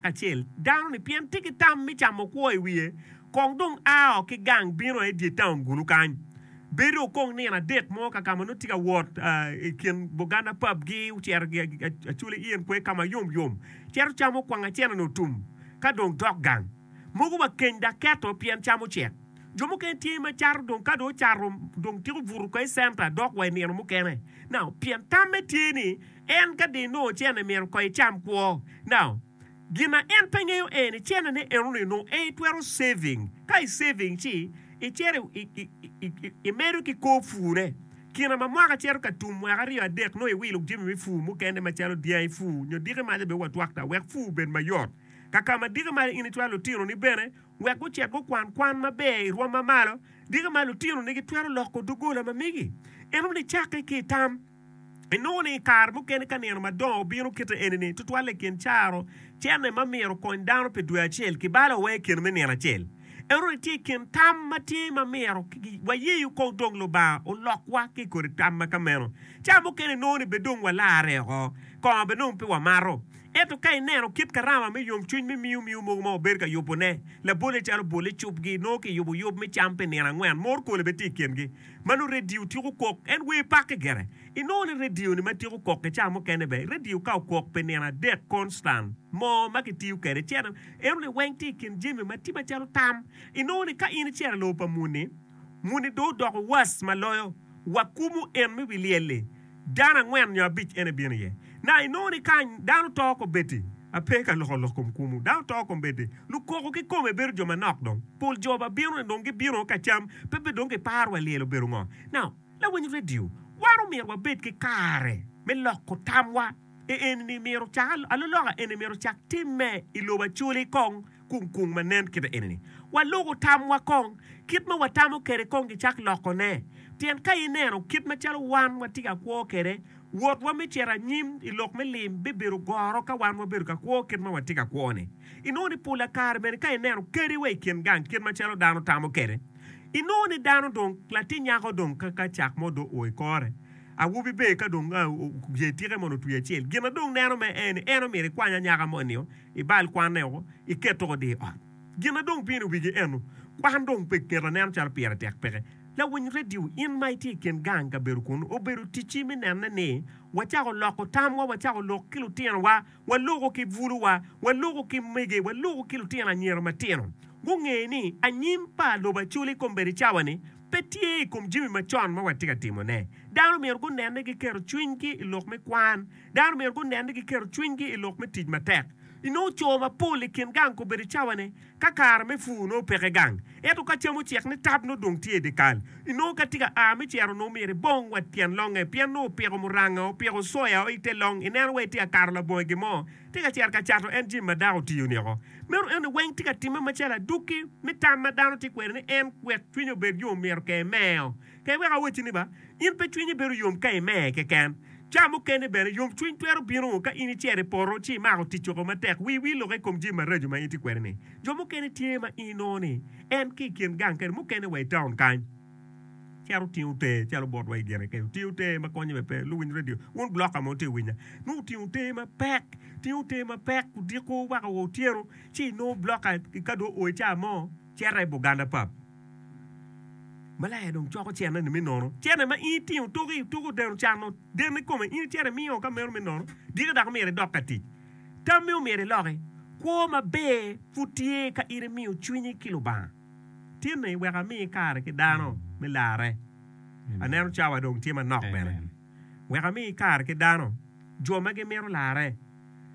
acel dano-ni pien tye ki tam me camo kwo i wiye, kong dong a o ki gang bino aye i dye taun gulu kany. Bedo okong nino adek mo ka ka ma nongo tye ka wot i kin boganda papgi, ocito acula i in kwe ka ma yomyom, cito camo kwang acene-ni otum, ka dong dok gang. Mogo wa keny dok keto pien cam ocek. Jo mukene tye ma cato dong ka dong ocato dong tiko buto ka i centa dok wa i nino mukene. Now, pien tamme tye ni. En ka dong inongo cene myero ko icam kwo. Now, gin ma en pe ngeyo aye ni cene ne eno ni onongo aye itwero saving. Ka i saving ci icito imedo ki kor pur ne. Kina ma mwaka cito ka tum mwaka aryo adek nongo iwilo jami me pur mukene macalo dyangi pur nyo diki malo bene wa twakta wek pur obed mayot. Kakama diki malo in icwalo lutinoni bene wek gucit gukwan kwan maber i rwom ma malo. Diki malo lutinoni gitwero loko dogola ma megi eno ni cakke ki itam. Inongo ni i kare mukene ka nino madongo obino kite eni-ni, tutwalle i kin caro cene ma myero okony dano pi dwe acel, kibalo wa i kine me nino acel. Ento ni tye i kin tam ma tye ma myero wayeyo oko odong Lubanga olokwa ki i kodi tam ma ka meno. Cawa mukene inongo ni bed dong walarre oko, kongo bed dong pe wamato. Ento ka ineno kit karama me yomcwiny me miyo miyo mogo ma wabedo ka yubone, labolle calo bolle cupgi nongo kiyubo yub me cam pi nino angwen, morkole bene tye i kingi. ma nongo redio tyeko kok en wer pakke gire. Inongo ni redio-ni ma tyeko kok i ca mukene ber. Redio ka okok pi nino adek konstan mo ma kitiyo kwede cito, enoni weng tye i kin jami ma tye macalo tam. Inongo ni ka in icito i lobo pa muni, muni dong odoko was ma loyo wa kumo en me wi lyel-li. Dano angwen nyo abic en ebino iye. Na inongo ni kany dano to kobeddi, ape ka loko lok kom kwomu, dano to kombeddi, lukoko ki kome bedo jo manok dong. Pol jo ba bino ni dong gibino ka cam, pe bed dong kiparo wa lyel obedo ngo. Now, lawiny radio, wan omyero wabed ki kare me loko tamwa. I enini myero cak aloloka eni myero ocak timme i lobo acoli kong kung kung ma nen kite enini. Waluku tamwa kong, kit ma watamo kede kong gicak loko ne. Pien ka ineno kit ma calo wan watye ka kwo kede, wotwa me cito anyim i lok me lim bibedo goro ka wan wabedo ka kwo kit ma watye ka kwo ni. Inongo ni pola kare bene ka ineno kadi wa i kin gang kit ma calo dano tamo kede, inongo ni dano dong latin nyako dong ka ka cak mo dong o i kore. Awobi ber ka dong oye tike mono otwi acel. Gin a dong neno me aye ni en omyero ikwany anyaka moni nio, ibal kwanne woko, iket toko di ot. Gin a dong pino wigi eno, kwan dong pe ngeto neno calo pire tek peke. Lawiny radio, in ma itye i kin gang kabedo kunu, obedo ticci mi nene ni wacako loko tamwa, wacako lok ki lutinowa, waloko ki bwuluwa, waloko ki mege, waloko ki lutino anyira matino. Gunge ni anyim pa lobo acoli kombeddi cawa ni, pe tye i kom jami macon ma watye ka timone. Dano myero gunen ni giketo cwinygi i lok me kwan. Dano myero gunen ni giketo cwinygi i lok me tic matek. Inongo co mapol i kin gang kobedo cawane ka kare me pur nongo peke gang. Ento ka cam ocek ni tap nongo dong tye i dye kal. Inongo ka tye ka a me ciro nongo myero ibong wa tyen longe pien nongo opiko muranga, opiko soya o i te long. Ineno wa itye ka kato labongo i gin mo, tye ka cito ka cato en jami ma dako otiyo niko. Meno eni weng tye ka timme macalo adukki me tam ma dano tye kwede ni en wek cwinye obed yom myero ka emeo. Ka iweko awacci ni ba, in pe cwinyi bedo yom ka imer keken. Ca mukene bene, yomcwiny twero bino ka in icito i poto ci imako tic oko matek, wii wil oko i kom jami maraco ma in itye kwede-ni. Jo mukene tye ma inongo ni en ki i kin gang kadi mukene wa i taun kany. Cito tingo ter calo botwa i gine kene. Tingo ter ma konyo me pe luwiny radio. Wun bloka mo te winya. Nu tingo ter ma pek. Tingo ter ma pek. Diko waka wo otyeno. Ci nu bloka ka do oe ca mo. Ceta i Buganda pap. Malaya dong coko cene ni mi nono. Cene ma in tingo tuki tuki odeno cano. Den ni kome in cene miyo ka meno mi nono. Diki dako mire dok ka tic. Tam mi omire loki. Kwo ma ber putye ka in imiyo cwinyi ki lubanga. Tinni wek ami kare ki dano me larre. Aneno cawa dong tye manok bene. Wek ami kare ki dano, jo ma gimito larre.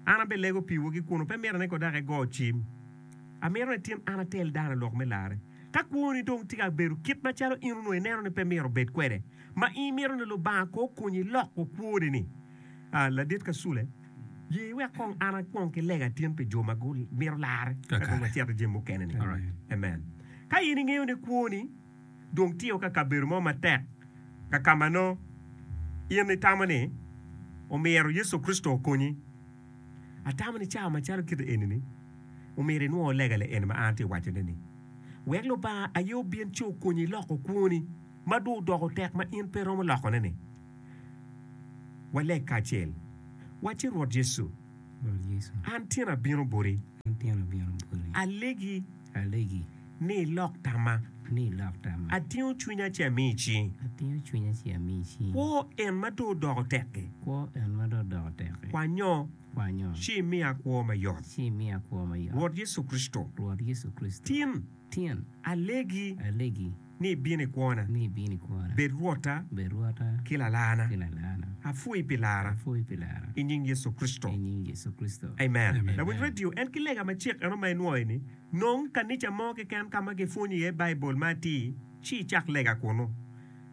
An abelego piwu ki kunu, pe mito ni ko dok igo cim. Amito ni tin an atel dano lok me larre. Ka kwoni dong tye ka bedo kit macalo in onongo ineno ni pe myero obed kwede, ma imito ni Lubanga ko okonyi loko kwoni-ni, Ah, ladit ka sule, ye iwek kong an akwong ki lega tin pi jo ma gumito larre, ka dong wacito i jami mukene-ni. Amen. Ka in ingeyo ni kwoni dong tye o ka kabedo mo matek, ka ka ma nongo in itamo ni omyero Yecu Kricito okonyi, atamo ni cawa macalo kite eni-ni, omyero inwongo lega le eni ma an atye ka wacone-ni. Wek Lubanga aye obin ci okonyi iloko kwoni ma dong odoko tek ma in pe iromo lokone-ni. Waleg kacel, wacci, Rwot Yecu, an tyen abino boti. Alegi ni ilok tamma. Atingo cwinya ci ami i cingi. Kwo en ma dong odoko tek-ki, kwanyo ci imiya kwo mayot. Rwot Yecu Kricito, tin alegi. ni ibino i kwona, bed Rwotta ki Lalarna. Apwoyi pi lara. I nying Yecu Kricito, amen. Lawiny redio en ki lega macek eno ma inwoyo ni, Nong kanica mo keken ka ma kipwonyo iye Baibul ma atir, ci icak lega kunnu.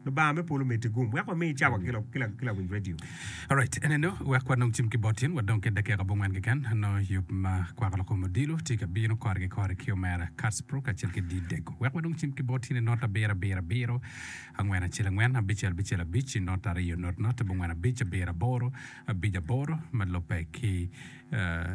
Lubanga me polo omeddi gum wek wami cawa ki lawiny redio. Alright, eneno wek wanong cim ki bot in, wadong ki dakika abongwen keken, nongo yub ma kwako lokom odilo tye ka bino kore ki kore ki omera Kartsbro kacel ki Dee Dego. Wek wanong cim ki bot in inot abiro abiro abiro, angwen acel angwen, abicel bicel abic, inot ariyo not not, abongwen abic, abiro aboro, abic aboro ma lubbe ki, uh,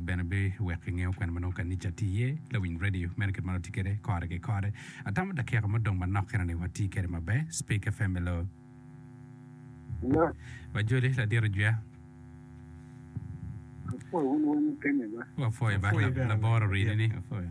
Bene be wek kingeyo kwena ma nongo kanica tye iye. Lawiny radio meno kit ma watye kwede kore ki kore. Atamo dakika ma odong manok kene ni wati kwede maber. Speaker FM hello. Hello. Wajoli ladito jwer. Apwoyo wun weng mukene ba. Wapwoyo ba laboro rini ni. Apwoyo.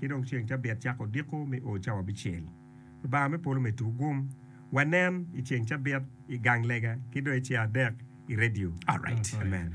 Ci dong ceng cabit cako odiko me o cawa abicel. Lubanga me polo omedde tuko gum. Wanen i ceng cabit i gang lega ki dong i ceng adek i redio. Amen.